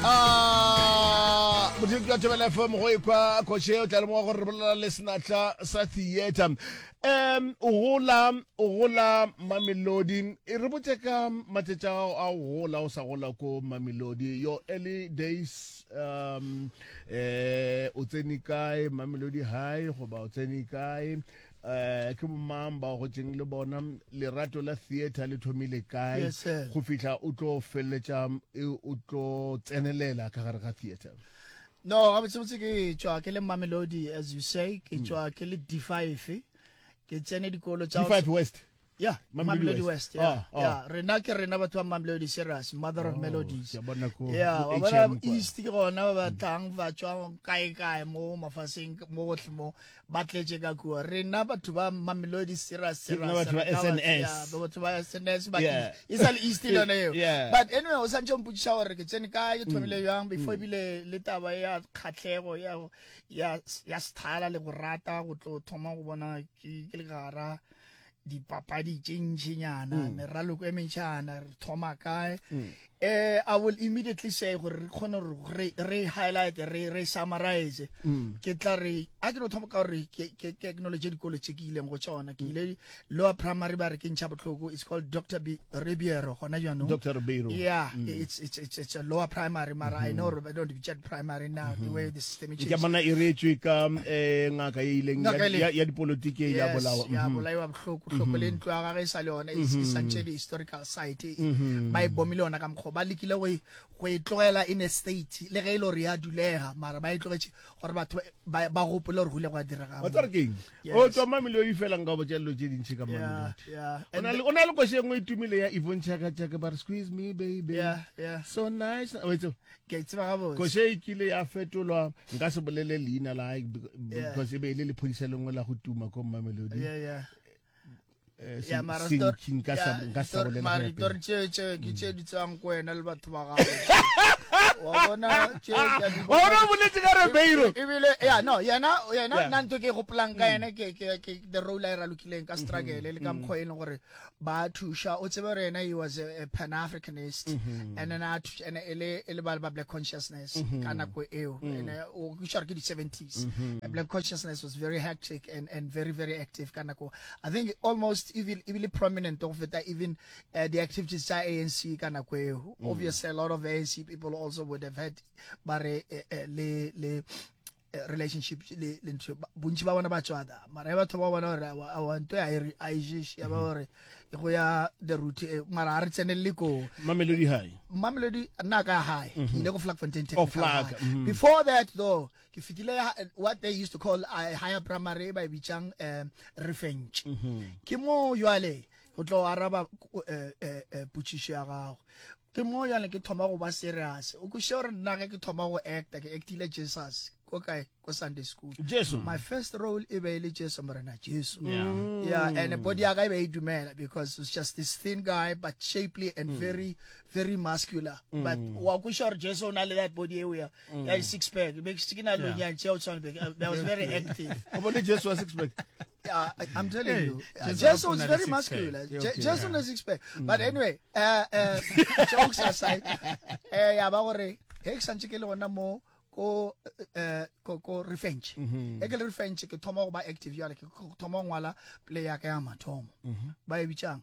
Ah, modiri ka tebela fm go ekwa kgoše o tla lemoga gore re bolela le senatla sa theater um o gola o gola mamelodi e re botse ka matšatši a gago a go gola o sa gola ko mamelodi your early days um eh o tsene kae mamelodi high goba o tsene kae eh ke bomang ba go tseng le bona lerato la theater le thomile kae Yes, sir. go fihla o tlo feleletša e, o tlo tsenelela ka gare ga theater no gabotsebotse ke tšwa ke le mamelodi as you say ke tšwa ke le d5 ke tsene dikolo tsa G5 West Yeah, Mamelodi West. Yeah, ah, ah. yeah. Rena ke rena batho ba Mamelodi serious, mother of oh, melodies. Yeah, wa bona East ke gona ba batlang ba tswa kae kae mo mafaseng mo gotlhe mo ba tletse ka kua. Rena batho ba Mamelodi serious serious. Rena batho ba SNS. Yeah, batho ba SNS ba yeah. It's all East le yone eo. Yeah. But anyway, o santse o mputsisa gore ke tsene ka ke thomile mm. yang before mm. bile le taba ya khatlego ya ya ya sthala le go rata go tlo thoma go bona ke le gara. dipapadi tše ntšhinyana mm. meraloko e mentšhana re thoma kae mm. eh i will immediately say gore re kgone gore re highlight re re summarize mm. ke tla re a ke no thoma ka gore ke ke technology dikolo tse ke ileng go tsona ke ile lower primary ba re ke ntšha botlhoko it's called dr b Ribeiro gona jaanong Dr. Ribeiro yeah mm. it's, it's it's it's a lower primary mara mm -hmm. I know Ribeiro don't get primary now mm -hmm. the way the system is ke bona e retswe ka eh ngaka e ileng ya ya dipolitiki yes, ya bolawa ya mm-hmm. bolawa bohloko hloko mm-hmm. le ntlo ya gagwe e sa le yona e mm-hmm. santse di historical site e ba e bomile yona ka mkgo ba lekile go e, go e tlogela in a state le ge e le gore ya dulega mara ba e tlogetše gore batho ba gopole gore go ile go a direga wa tsare keng o tswa mamele o ifela nka botša dilo tše dintšhi ka mamele o na le koše engwe e tumile ya ivon chakachake ba re squeeze me baby so nice koše e kile ya fetolwa nka se bolele leina la because e be e le lephodisa lengwe la go tuma ko mamelodi Eh, ya mara maritori tšeo tšeo ke tše di tswang ko wena le batho ba gago wa bona ona boletse ka rebeiro ebile ya no yena yena nna ntho ke gopolang ka yena ke ke ke the role a e ralokileng ka struggle le ka mkho e leng gore ba thusha o tsebe gore yena he was a pan africanist and then a thusha ene ele ele ba ba black consciousness ka nako eo ene o kushar ke di 70s black consciousness was very hectic and and very very active ka nako I think almost even even prominent go feta even uh, the activities tsa ANC ka nako eo mm. obviously a lot of ANC people also would have had bare uh, uh, le le uh, relationship le le ntho bontsi ba bona ba tswada mara batho ba bona gore a wa nto ya a ijish ya ba mm. gore go ya the route eh, mara a re tsenelele ko mamelodi high mamelodi nna ka high mm-hmm. ke ile go flag fontaine technical oh, mm-hmm. before that though ke fitile ya what they used to call uh, higher primary ba e bitsang uh, refench mm -hmm. ke moo jwale go tlo araba uh, uh, uh, putsišo ya gago ke moo jwale ke thoma go ba serious o kweše gore nna ge ke thoma go acta ke actile jesus ko kae ko sunday school jesu my first role e be e le jesu morena jesu yeah. Mm. yeah and body ya ka e be e dumela because it's just this thin guy but shapely and mm. very very muscular mm. but wa kweša gore jesu o na le that body eo ya Mm. Yeah, six pack. Be ke ke na lo nya tšeo tshwana be I was very active. O bone Jesu wa six pack. Yeah, I'm telling hey, you. Yeah, Jesu was very muscular. Okay, okay, Jesu yeah. na six pack. Mm. But anyway, uh, uh, jokes aside, eh ya ba gore he ke santse ke le gona mo ko eh ko ko revenge mm-hmm. e ke le revenge ke thoma go ba active yale ke thoma ngwala play ya ka ya mathomo mm-hmm. ba e bitsang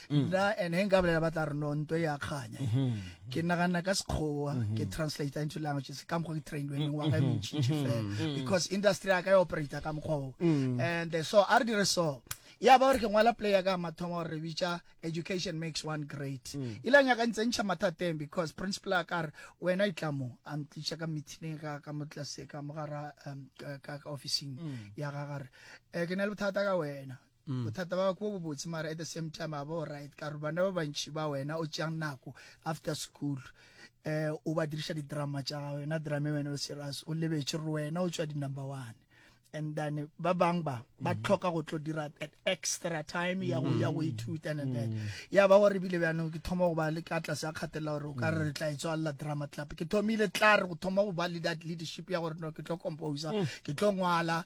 mm. nna and he nka bolela ba tla re no nto ya kganya mm-hmm. ke naganna ka sekgowa mm-hmm. ke translate into languages ka mokgwa ke trained wene wa ka e mentšintši mm-hmm. fela mm. because industry ya ka e operator ka mokgwa o mm. and eh, so a re dire so ya ba gore ke ngwala play ya ka mathomo gore re bitša education makes one great mm. ile nyaka ntse ntšha mathateng because principal a ka re wena e tla mo a ntliša ka meeting ka ka mo tlase ka mo gara um, ka officing mm. ya ga gare um ke na le bothata ka wena Bothata ba kwa bobotse mara at the same time a ba o right ka gore bana ba bantši ba wena o tšeang nako after school um o ba diriša didrama tša gago yona drama wena o serious o lebetše gore wena o tšwa di-number one and then ba bang ba ba mm-hmm. tlhoka go tlo dira that extra time ya go ya go mm-hmm. ithuta and then mm-hmm. ya ba gore bile bjanong ke thoma go ba le ka tlase a kgatelela gore o ka re re tla etswalela drama club ke thomile tla re go thoma go ba le that leadership ya gore no ke tlo composer mm. ke tlo ngwala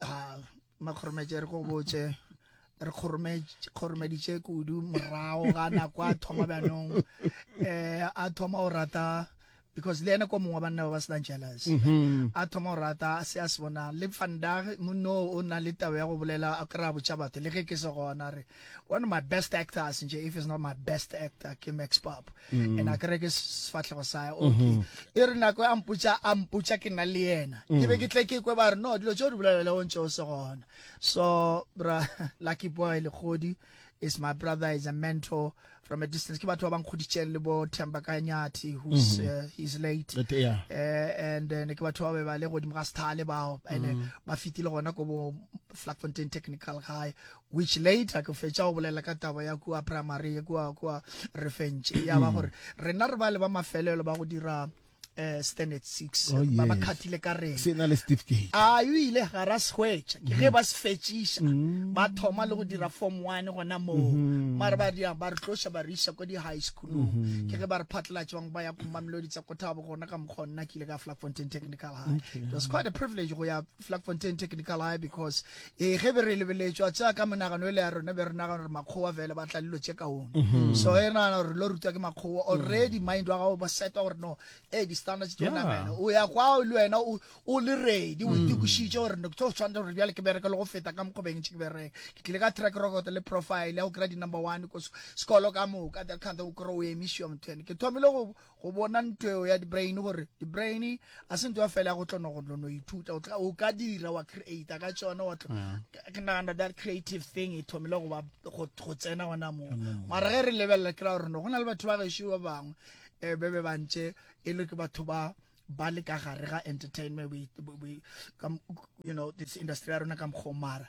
a makgorometše re go botse re kgoromeditše kudu morago ga nako a thoma bjanong um a thoma go rata because le ene ko mongwe banna ba ba senang jealous mhm. a thoma go rata se a se bonang le vandag monno o na le tabo ya go bolela a kry-a botšha batho le ge ke se gona re one of my best actors nje if it's not my best actor ke max pop mm. and a kere ke sefatlhego sa mm-hmm. okay mm -hmm. e re nako a mputša a mputša ke na le yena mm. ke be ke tle ke kwe ba re no dilo tse o di bolelela o ntse o se gona so bra lucky boy lekgodi is my brother is a mentor from a distance ke batho ba bang kgoditseng le bo Themba Kanyati who's mm -hmm. uh, he's late But, yeah. uh, and uh, ke batho ba ba le godimo ga sthale bao and mm -hmm. ba fitile gona ko bo Flatfontein Technical High Which later ke fetša go bolela ka taba ya kua primary ye kua kua re fentše ya ba gore rena re bale ba mafelelo ba go dira eh, standard six oh, yes. ba ba khathile ka rena se na le certificate a yo ile ga ra sehwetša ke ge mm. ba se fetšiša mm. ba thoma le go dira form one gona moo mm-hmm. mare ba dia ba re tloša ba re ko di-high schoolong mm-hmm. ke ge ba re phatlalatša bangwe ba ya komamelodi tsa kothabo gona ka mokgwa nna ke ile ka flag fontain technical high it was quite a privilege go ya flag fontain technical high because Ee, ge be re lebeletšwa tša ka menagano e le ya rona be re nagana gore makgowa fela ba tla lilo tše kaone mm-hmm. so e nagana gore lo rutwa ke makgowa mm. already mind wa gago ba setwa gore no e di-standards tse namela o ya kwa le wena o le ready o mm. itekošitše gore no tse o tshwanetse gore bjale ke bereke le go feta ka mokgobeng tše ke bereke ke tlile ka track record le profile ya go kry di-number one ko sekolo ka moka that kind o kry o emišiwa motho ene ke thomile go go bona ntho eo ya di-brain gore di-brain a se ntho ya fela ya go tlono go tlono ithuta o ka dira wa creata ka tsone wa mm. ke nagana that creative thing e thomile go tsena gona moo mm. mara ge re lebelela kry gore no go na le batho ba gešo ba bangwe um be be bantse e le ke batho ba ba le ka gare ga entertainment you know this industry ya rona ka mokgomara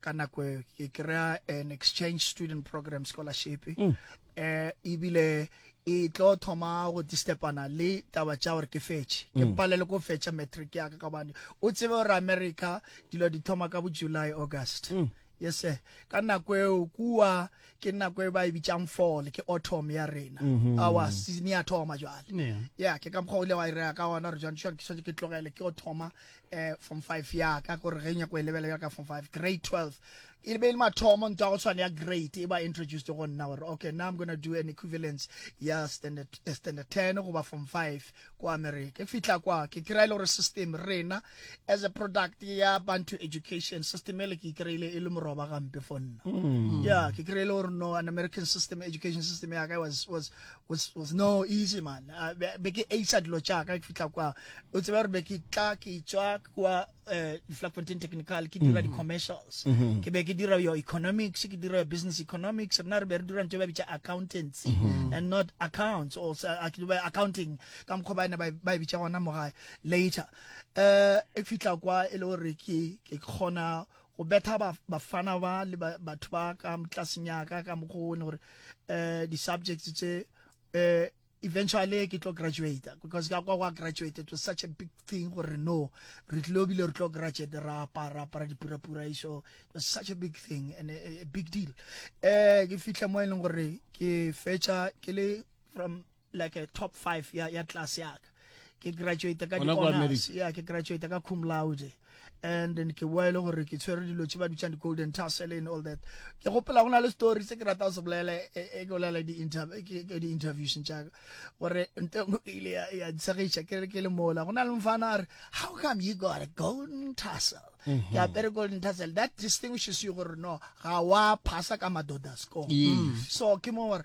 ka nako e, ke kry-a an exchange student program scholarship mm. eh ebile e tlo thoma go distepana le taba tša gore ke fetše ke mm. palele ko fetša matric ya ka ka bane o tsebe gore america dilo di thoma ka bo july august mm. yes sir ka nako eo kua ke nako e ba e bitsang fall ke autumn ya rena mm-hmm. awa season ya thoma jwale ya ke ka mokgwa o ile wa irega ka gona re jwantsho ke swantse ke tlogele ke go thoma eh, form 5 ya ka gore ge nyako e lebela ka form 5 grade 12 e be e le mathomo ntwa go tshwana ya grade e ba introduced go nna gore okay now i'm gonna do an equivalence ya standard, uh, standard 10 goba form 5 kwa america ke fihla kwa ke kry-e gore system rena as a product ya bantu education system ele ke kry-ile e le moroba gampe for nna mm. yeah ke kry-ile gore no an american system education system ya ka was, was, was, was no easy man uh, be ke aisa dilo tša ka ke fihla kwa o tseba gore be ke tla ke tswa kwa uh, Flafontaine Technical ke dira mm-hmm. di-commercials mm-hmm. ke be ke dira your economics ke dira your business economics rena re be re dira ntho ba bitša accountancy mm-hmm. and not accounts or uh, accounting ka mokgwa ba ene ba e bitša gona mo gae later um e fihla kwa e le gore ke kgona go betha ba, bafana ba le ba, batho ba ka motlasenyaka ka mokgwa one gore um di-subjects tse um eventually ke tlo graduate because ka kwa gwa graduate it was such a big thing gore no re tlile obile re tlo graduate ra apara apara dipurapura iso it was such a big thing and a, a big deal um ke fitlhe mo e leng gore ke fetša ke le from like a top 5 ya ya class ya ka ke graduate ka honors ya ke graduate ka cum laude and then ke boele gore ke tshwere dilo tse ba bitšang di-golden tassel and all that ke gopela go na le story se ke rata se bolela e, e, e ke bolela di-interviews tšaka gore ntengo e ile ya ntshegiša ke re ke le mola go na le mfana a re how come you got a golden tassel mm-hmm. ke apere golden tassel that distinguishes you gore no ga wa phasa ka madoda score mm. so ke mo gore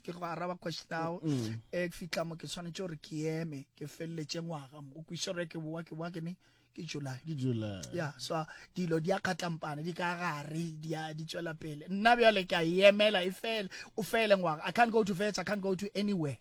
ke go araba question ao mm. e ke fitla mo ke tshwanetse gore ke eme ke feleletse ngwaga mo o kwise gore ke bowa ke bowa ke ne ke july ke july ya so dilo di a kgatlampane di ka gare di a di tswela pele nna bjale ke a e emela e fele o fele ngwaga i can't go to vets i can't go to anywhere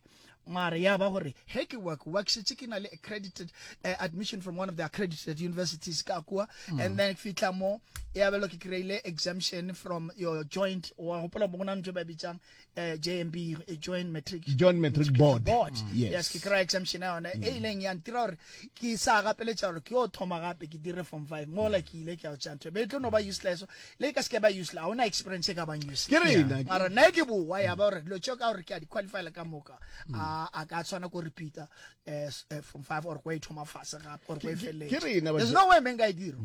mara ya ba gore he ke wa kuwa ke setse ke na le accredited uh, admission from one of the accredited universities ka kuwa mm. and then fitla mo ya belo ke kry-ile exemption from your joint wa gopola mo go na ntho e ba bitsang uh, JMB eh, Joint Matric Joint Matric Board, board. Mm. Yes. yes ke kry exemption ya yone mm. e ileng ya ntira gore ke sa gapeletša gore ke yo thoma gape ke dire form five mo la ke ile ke ya tša ntho be tlo no ba useless le ka se ke ba useless ga ona experience e ka bang useless mara nna ke bowa ya ba gore dilo tšeo ka gore ke a di qualify le ka moka mm. a ka tshwana ko repeater eh, eh, form five or ko e thoma fase gape or ko e feleletše there's no way men ka e dira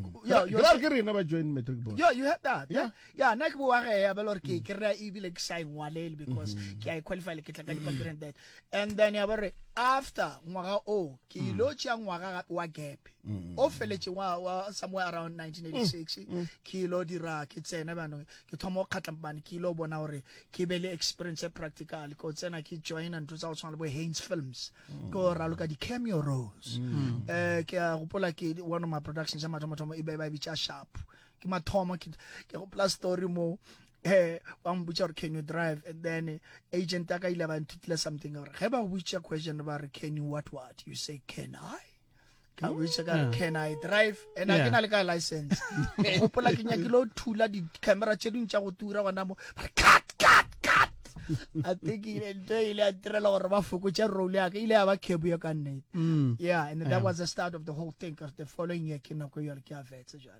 ke rena ba joint matric board yeah you had that yeah ya nna ke bowa ge ya bela gore ke kry-a ebile ke sa engwalele because mm-hmm. ke a e qualify le ke tla ka dipampiri and that and then ya bore after ngwaga o ke mm. ilo tšea ngwaga gape wa gape mm. o feletse wa somewhere around 1986 mm. ke ilo dira ke tsena banong ke thoma go kgatla bane ke ilo bona gore ke be le experience e practical ko tsena ke join ntho tsa go tshwana le bo haines films ko raloka di-cameo roles um eh, ke a gopola ke one of my productions ya mathomathomo e be ba e bitša sharp ke mathomo ke ke go plus story mo eh ba mbutša gore can you drive and then eh, agent a ka ile ba nthutile something gore ge ba go butša question ba re can you what what you say can i ka butša ka re Yeah. can i drive and a Yeah. ke na le ka license gopola ke nyakile o thula di-camera tše dingwe tša go tura gona mo ba re cut cut cut a think ile ntho e ile a ntirela gore ba fokotše role yaka ile ya ba cabo ya ka nnete Mm. yeah and that Yeah. was the start of the whole thing 'cause the following year ke nako yale ke a vetse jale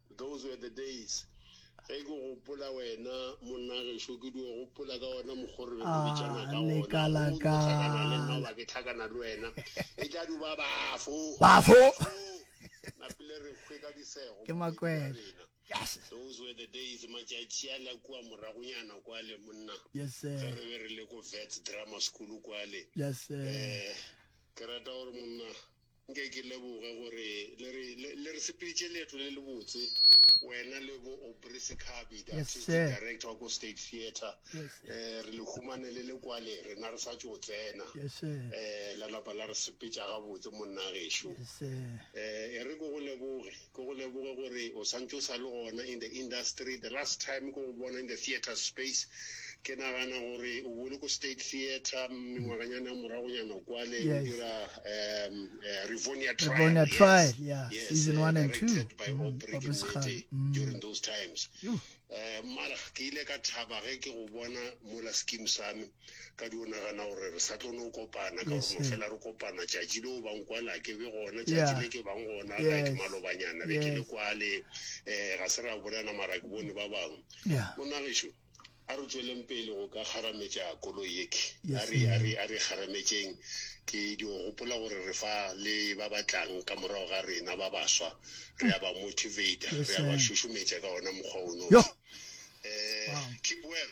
Those were the days. Ge ke gopola wena monna gešo ke dio gopola ka ona mokgo re be re bitšana ka ona. Go dio tlhakana le nna oba ke tlhakana le wena. E tla di ba bafo. Bafo. Napile re hwe ka disego. Ke makwele. Yes. Those were the days matšatši a la kua moragonyana kwale monna. Yes sir. Ge re be re le ko Vets Grammar School kwale. Yes sir. Eh ke rata gore monna. Nke ke leboge gore le re, le, le re sepeditše leeto le lebotse, wena le bo Aubrey Sekhabi, the Yes, artistic sir. director wa ko State Theatre. Yes, sir. Eh, re le humane le le kwale, rena re sa tšo tsena. Yes, sir. Eh, la napa la re sepetša gabotse, monna gešo. Yes, sir. Eh, e re ke go leboge. Ke go leboge gore o santse o sa le gona in the industry. The last time ke go bona in the theatre space, ke nagana gore o bole ko State Theatre mengwaganyana ya moragonyana kwale o dira um Rivonia Trial. Rivonia yes. Trial, yeah. Yes, season uh, one and two. Directed by mm, Aubrey Kimete mm. during those times. Uh, mara ke ile ka thaba ge ke go bona mola scheme sa me. Ka di o nagana gore re sa tlo no kopana ka gore mafela re kopana tšatši le o bang kwala ke be gona tšatši le ke bang gona ga ke malobanyana be ke le kwale um ga se ra bolana mara ke bone ba bangwe monagešo a re tsweleng pele go ka kgarametša koloi yeke a re kgarametšeng ke dio gopola gore re fa le ba batlang ka morago ga rena ba baswa re a ba motivata re a ba šušumetša ka ona mokgwa ono um keep well